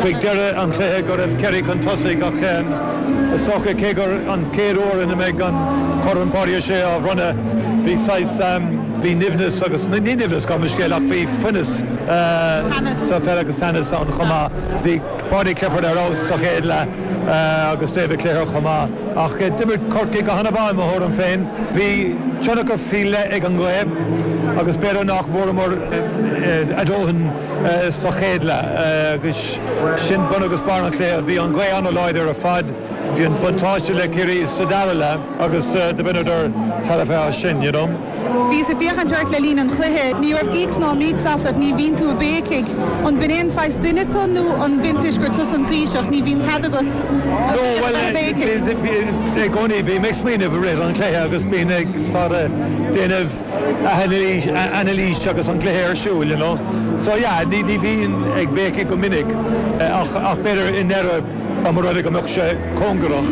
chuig deireadh an chluiche go raibh Ciarraí chun tosaigh ach, is dócha. Cé gur an chéad uair ina mbeidh an Corn Páidí Sé á bhronnadh, bhí saghas, bhí nimhneas agus, ní nimhneas gabh mo leithscéal ach bhí fuineas sa pheil agus teannas ann chomh maith. Bhí Paudie Clifford ar fheabhas sa chéad leath agus David Clifford chomh maith ach d'imir Corcaigh go hana-mhaith i mo thuairim féin. Bhí tionchar faoi leith ag an ngaoth agus b'fhéidir nach bhfuaireamar a dóthain. sa chéad leath agus sin bun agus barr an chluiche. Bhí an ghaoth an-láidir ar fad, bhí an buntáiste le Ciarraí sa dara leath agus do bhaineadar tairbhe as sin, you know. Bhíos ag féachaint ort le linn an chluiche. Ní raibh gíocs ná míocs asat, ní bhíonn tú ag béicigh. An b'in an saghas duine tú nó an b'in toisc gur tusa an Taoiseach? Ní bhíonn cead agat a bheith ag béicigh. No, bhuel, i gcónaí bhím ag smaoineamh i rith an chluiche agus bím ag sort of déanamh. anailís, anailís agus an cluiche ar siúl you know so yeah ní ní bhíonn ag béicigh go minic ach ach b'fhéidir i ndeireadh dá mba rud é go mbeadh sé cóngarach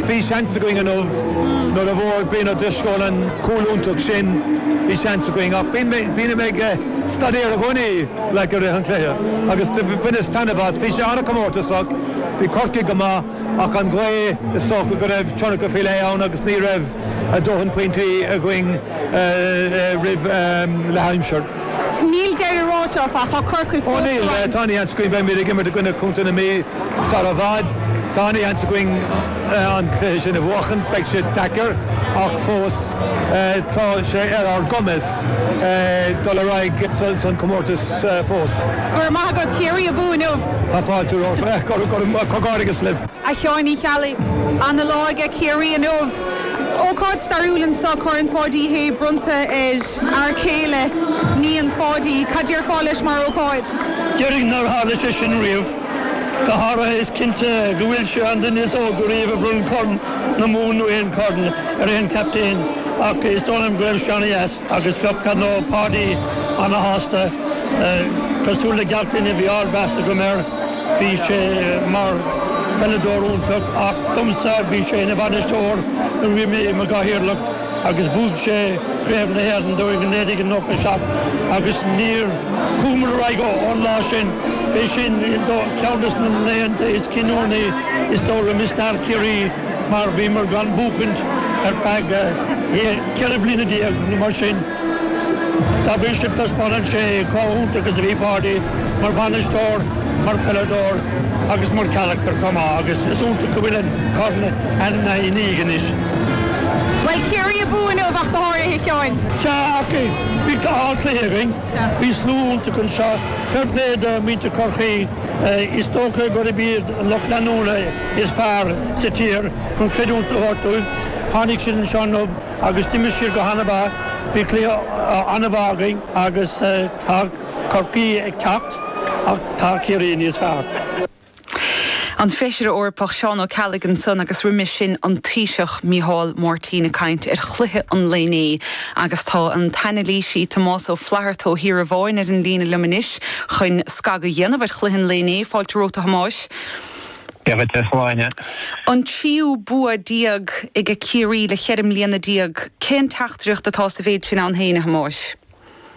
bhí seans againn inniu nuair a bhfuair Brian Ó Drisceoil an cúl iontach sin bhí seans againn ach bíonn mé bíonn mé ag staidéar i gcónaí like i rith an chluiche agus do bhaineas taitneamh as bhí sé an-comórtasach bhí Corcaigh go maith ach an ghaoth is dócha go raibh tionchar faoi leith ann agus ní raibh a dóthain pointí againn roimh leathaimsir. Níl deireadh ráite, áfach, tá Corcaigh fós sa bhaile. Ó níl, tá ana-sheans againn, beimid ag imirt i gcoinne Chontae na Mí sar i bhfad. Tá ana-sheans againn an cluiche sin a bhuachan. Beidh sé deacair ach fós tá sé ar ár gcumas dul ar aghaidh san comórtas fós. Go raibh maith agat, Ciarraí abú inniu! Tá fáilte romhat. Go raibh maith. Comhghairdeas libh. A Sheáin Uí Cheallaigh, ana lá aige Ciarraí inniu. Ócáid stairiúil anseo, Corn Pháidí Uí Shé bronnta ar fhear céile iníon Pháidí. Cad déarfá leis mar ócáid? Déarfainn nár tharla sé sin riamh. Go háirithe is cinnte go bhfuil sé an duine is óga riamh a bhronn Corn na Mumhan nó aon Chorn ar aon chaptaen ach is dóigh liom go raibh sé ana dheas agus bheadh dar ndóigh Páidí ana shásta. Cosúil le gach duine bhí ardmheas agam air. Bhí sé mar pheileadóir iontach ach domsa bhí sé ina bhainisteoir nuair a bhí mé i mo gcathaoirleach agus bhuaigh sé Craobh na hÉireann dúinn in 1997 agus níor chuamar ar aghaidh ón lá sin. B'é sin ceann des na laethanta is cinniúnaí is dóigh liom i stair Chiarraí mar bhíomar gan buachaint ar feadh ceithre bliana déag nó mar sin. Dá bhrí sin, taispeánann sé cé chomh hiontach agus a bhí Páidí mar bhainisteoir, mar pheileadóir agus mar charactar chomh maith agus is iontach go bhfuil an corn ina dhiaidh anois. Bhuel, Ciarraí a bhuaigh inniu ach go háirithe, Sheáin. Sea, ach bhí ardchluiche againn. Bhí slua iontach anseo. Fair play do mhuintir Chorcaí. Is dócha gurb iad an lucht leanúna is fearr sa tír chun creidiúint a thabhairt dóibh. Tháinig siad anseo inniu. Agus d'imir siad go han-mhaith. Bhí cluiche an-mhaith againn agus tá Corcaigh ag teacht ach tá Ciarraí níos fearr. An Feisire Eorpach Seán Ó Ceallaigh san agus roimis sin an Taoiseach Micheál Martin ag caint ar chluiche an lae inné agus tá an t-anailísí Tomás Ó Flatharta ó Thír an Bháin ar an líne liom anois chun scagadh a dhéanamh ar chluiche an lae inné. Fáilte romhat, a Thomáis. Dia dhuit, a Shláine. An tríú bua déag aige Ciarraí le cheithre bliana déag. Cén teachtaireacht atá sa mhéid sin ann féin, a Thomáis?